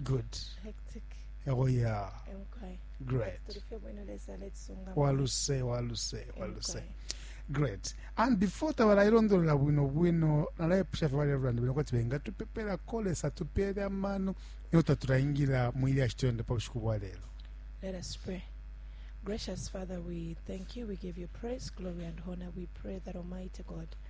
good hectic oh yeah emkwai great tuli fye bwino lesa letusunga waluse waluse waluse Emkwai. great and before tabalayilondolola bwino bwino nalayipusha fye balevulana bwino kuti bengatupepela kolesa tupeele amano iyo tatulayingira mu ilya shitende pa bushiku bwa lero Let us pray. Gracious Father, we thank you. We give you praise, glory, and honor. We pray that Almighty God,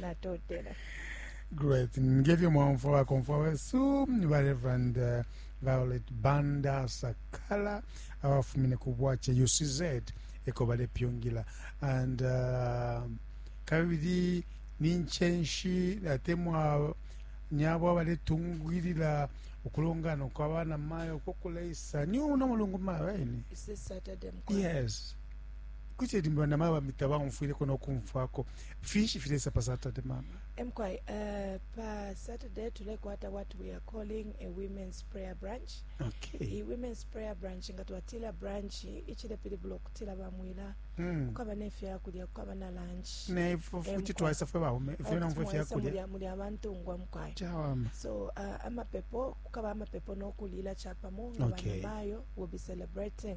natotela great ngefyo mwaumfwa bakomfwa wesu ba reverend uh, violet banda sakala abafumine ku bwace ucz eko balepyungila and uh, kabili ninchenshi atemwa nyabo abaletungwilila ukulongana kwa bana mayo kokuleisa ni uno mulungu mayo aini yes Kuti limba na maba mita baumfwileko no kumfwako. Finshi filesa pa Saturday mama? Emkwai, uh, eh, pa Saturday tulekwata what we are calling a women's prayer branch. Okay. I women's prayer branch nga twatila branch ichilepilibula okutila bamwila mm. kukaba nefya kulya kukaba na lunch. Ne futi twaisa fwe baume fwe na mfwe fya kulya. Muli abantu ngwa mkwai. Chawama. So uh, amapepo kukaba amapepo no kulila chapamo okay. Bayo will be celebrating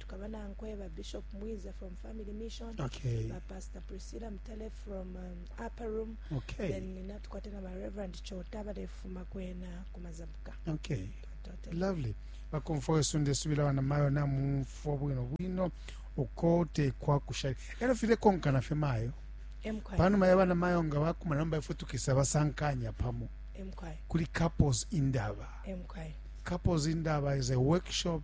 tukaba nankwe ba bishop mwiza from family mission okay. ba pastor priscilla mtale from um, upper room okay. then natukwate na ba reverend chota balefuma kwena kumazabuka okay. lovely bakomfwa wesu ndesubila bana mayo namumfwa bwino bwino uko tekwa kushali elo file konkana fe mayo panuma ya bana mayo nga bakuma namba ifwe tukisa basankanya pamo kuli couples indaba couples indaba is a workshop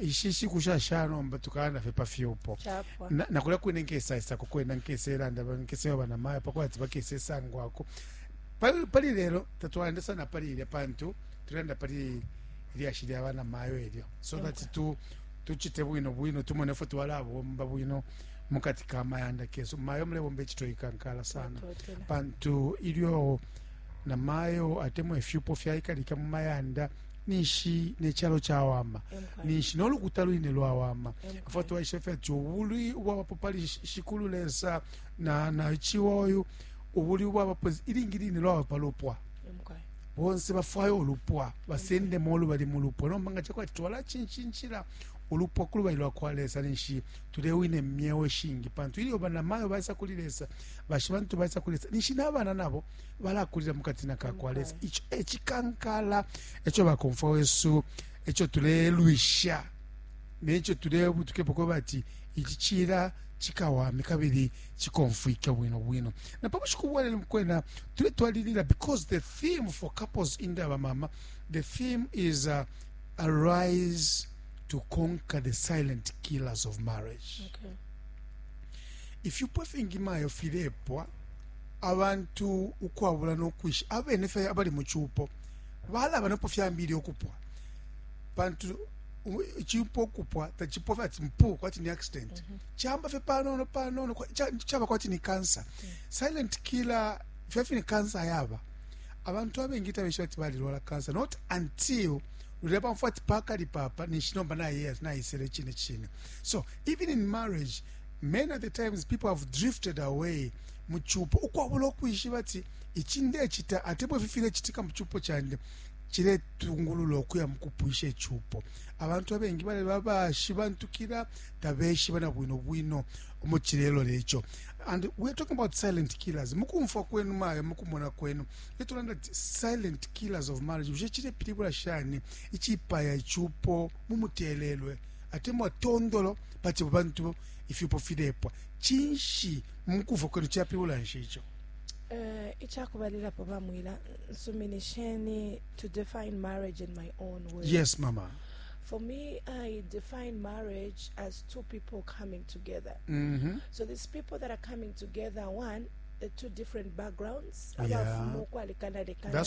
ishi nshiku shasha nomba tukalanda fye pa fyupo nakulya kwine nkesaisako kwena nkeselanda nkeseba banamaya pakuba ati bakesesangwako pali lelo tatwalanda sana pali ilya pantu tulanda pali ilyashi lya banamayo elyo so okay. that tu tuchite bwino bwino tumone fwe twalabomba bwino mukati ka mayanda kesu mayo mulebomba ekito ikankala sana pantu ilyo namayo atemwa ifyupo fyaikalika mu mayanda ninshi ne calo cawama ninshi no lukuta lwine lwawama afo twaishe fye ati ubulwi ubwabapo pali shikulu lesa na na chiwoyu ubulwi ubwabapo ilingi line lwaba pa lupwa bonse bafwaya ulupwa basendemo olubali mu lupwa nomba nga chakwati twalachinchinchila ulupwa ku lubali lwa kwa lesa ninshi tulewine myewo shingi pantu ilyo banamayo baisa kuli lesa bashi bantu baisa kuli lesa ninshi n'abana nabo balakulila mu katina ka kwa lesa ico ecikankala eco bakomfwa wesu eco tulelwisha neco tulebutukepo kweba ati ici cila cikawame kabili cikomfwike bwino bwino na pa bushiku bwalelo kwena tuletwalilila because the theme for couples in the abamama the theme is uh, arise to conquer the silent killers of marriage okay. if you puffing imayo filepwa abantu ukwabula no kwisha abene fye abali mu cupo balaba napo fyambile ukupwa pantu icupo ukupwa tacipwa fye ati mpu kwati ni accident mm -hmm. camba fye panono panono caba kwati ni cancer mm -hmm. silent killer fya fye ni cancer yaba abantu abengi tabesha ati balilwala cancer not until lulya pamfwa ati pakali papa ninshi nomba naye nayisele chine chine so even in marriage many of the times people have drifted away mu cupo ukwabula ukwishiba ati ici ndecita atemwa ifi filecitika mu cupo candi ciletungulula ukuya mu kupwisha icupo abantu abengi baleba bashibantukila tabeshiba na bwino bwino omo cilelola eco and weare talking about silent killers mukumfwa kwenu mayo mukumona kwenu etulanda ti silent killers of marriage bushe cilepilibula shani icipaya icupo mumutelelwe atemwa tondolo pati bantu ifyupo filepwa cinshi Mu kumfwa kwenu capilibula nshi ico? Ica kubalilapo bamwila, Nsuminisheni to define marriage in my own words. Yes, mama. For me, I define marriage as two people coming together. Mm -hmm. So these people that are coming together, one, the two different backgrounds abafumu ukwalekana lekana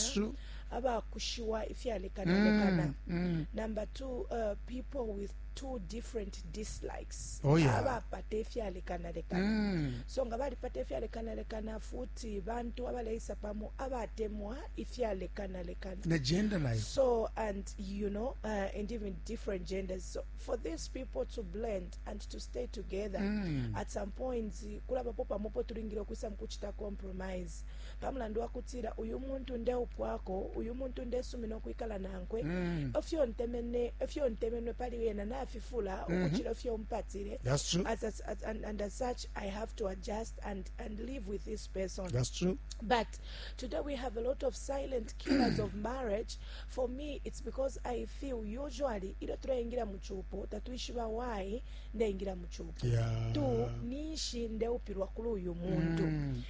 abakushiwa ifyalekana lekana mm, mm. number two uh, people with two different dislikes oh, yeah. abapata ifyalekanalekana mm. so nga balipata ifyalekanalekana futi bantu abaleisa pamo abatemwa ifyalekanalekana na gender life so and you know uh, and even different genders so for these people to blend and to stay together mm. at some point kulabapo pamopo tulingile okwisa mukuchita compromise pa mulandu wa kutila uyu muntu ndeupwako uyu muntu ndesumina ukwikala nankwe mm. efyo ntemene efyo ntemenwe pali yena nafifula mm -hmm. ukucila efyo mpatile That's true. As, as, as, and, and as such i have to adjust and, and live with this person That's true. but today we have a lot of silent killers of marriage for me it's because i feel usually ilyo tulaingira mu cupo tatuishiba why ndaingira mu cupo yeah. tu ninshi ndeupilwa kuli uyu muntu mm.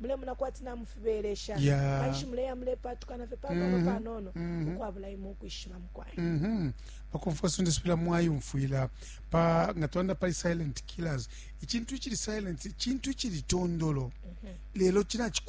mulemona kwati namufibelesha yeah. kanshi muleya mulepatukana fye panono mm -hmm. panono mm -hmm. ukwabula imwe ukwishiba mukwai mm -hmm. pakumfwa sunde sipila mwayumfwila pa nga twanda pali silent killers icintu icili silent icintu icili tondolo mm -hmm. lelo cinaciku